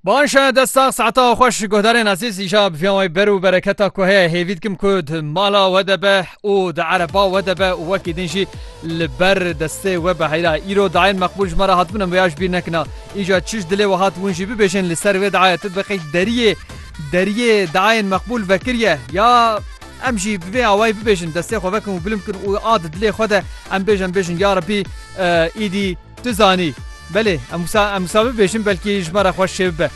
Baş dest sax saeta xweş guhdarên ezîz îja bi viyan wê ber û bereketa ku heye hêvî dikim ku di mala we de be û di ereba we de be û wekî din jî li ber destê we be heyra îro dayên meqbûl ji me re hatibin em vêya ji bîr nekina îja çi ji dilê we hat hûn jî bibêjin li ser vê dayê tu biqî deriyê deriyê dayên meqbûl vekiriye ya em jî bi vê awayî bibêjin destê xwe vekin û bilim kin û a di dilê xwe de em bêjin bêjin ya rebî îdî Tu zanî, belê em wisa em wisa bibêjin belkî ji me re xweş çê bibe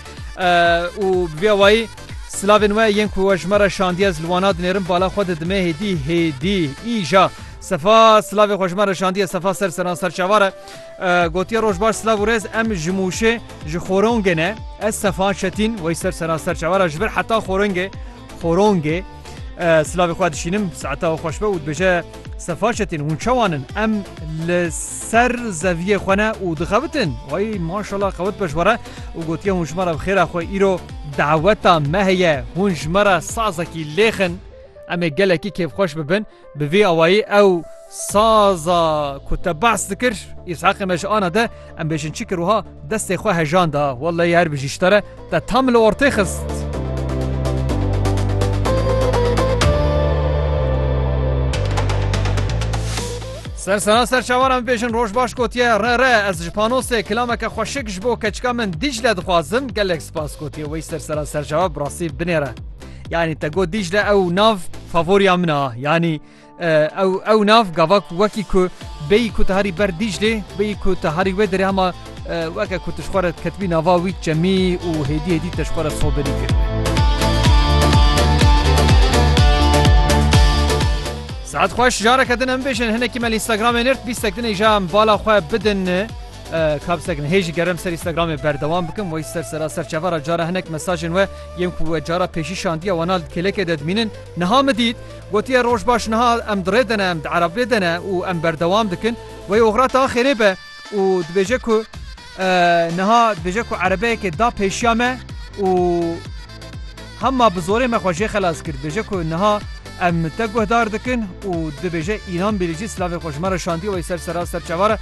û bi vê awayî Silavên we yên ku we ji me re şandiye ez li wana dinêrim bala xwe didime hêdî hêdî îja Sefa silavê xwe ji me re şandiye Sefa ser seran ser çavar e gotiye roj baş silav û rêz em ji mûşê ji xorongê ne ez Sefa Çetîn wey ser seran ser çavar e ji vir heta xorongê Xorongê, Silavê xwe dişînim, saeta we xweş be û dibêje Sefaçetên hûn çawan in? Em li ser zeviyê xwe ne û dixebitin? Way maşala xewit be ji we re û gotiye hûn ji me re bi xêra xwe îro daweta me heye, hûn ji me re sazekî lêxin, em ê gelekî kêfxweş bibin. Bi vî awayî ew saza ku te behs dikir Îshaqê me ji ana de em bêjin çi kir wiha destê xwe hejan da welleyî her bijî ji te re te tam li ortê xist. Ser sena ser çawaran bêjin roj baş gotiye re re ez ji panosê kilameke xweşik ji bo keçika min dîcle dixwazim gelek spas gotiye wê ser sera serçawa bi rastî binêre. Yani te got Dicle ew nav favoriya min a. Yani ew ew nav gava ku wekî ku bêyî ku te herî ber Diclê bêyî ku te herî wê derê hema weke ku tişxwara ketibî nava wî çemî û hêdî hêdî teşxwara soberî kir. Saet xweş jareke din em bêjin hinekî me Instagramê nirt bîstek dinê jam bala xwe bidin. Ka bi ser kirin hê jî gerem ser Instagramê berdewam bikim wey ser sera ser çeva re cara hinek mesajên we yên ku we cara pêşî şandiye wana li kêlekê de dimînin niha min dît gotiye roj baş niha em di rê de ne em di erebê de ne û em berdewam dikin wey oxira te a xêrê be û dibêje ku niha dibêje ku erebeyekê da pêşiya me û hema bi zorê me xwe jê xelas kir dibêje ku niha em te guhdar dikin û dibêje înan bêrî jî silavê xwe ji me re şandiye wey ser sera ser çeva re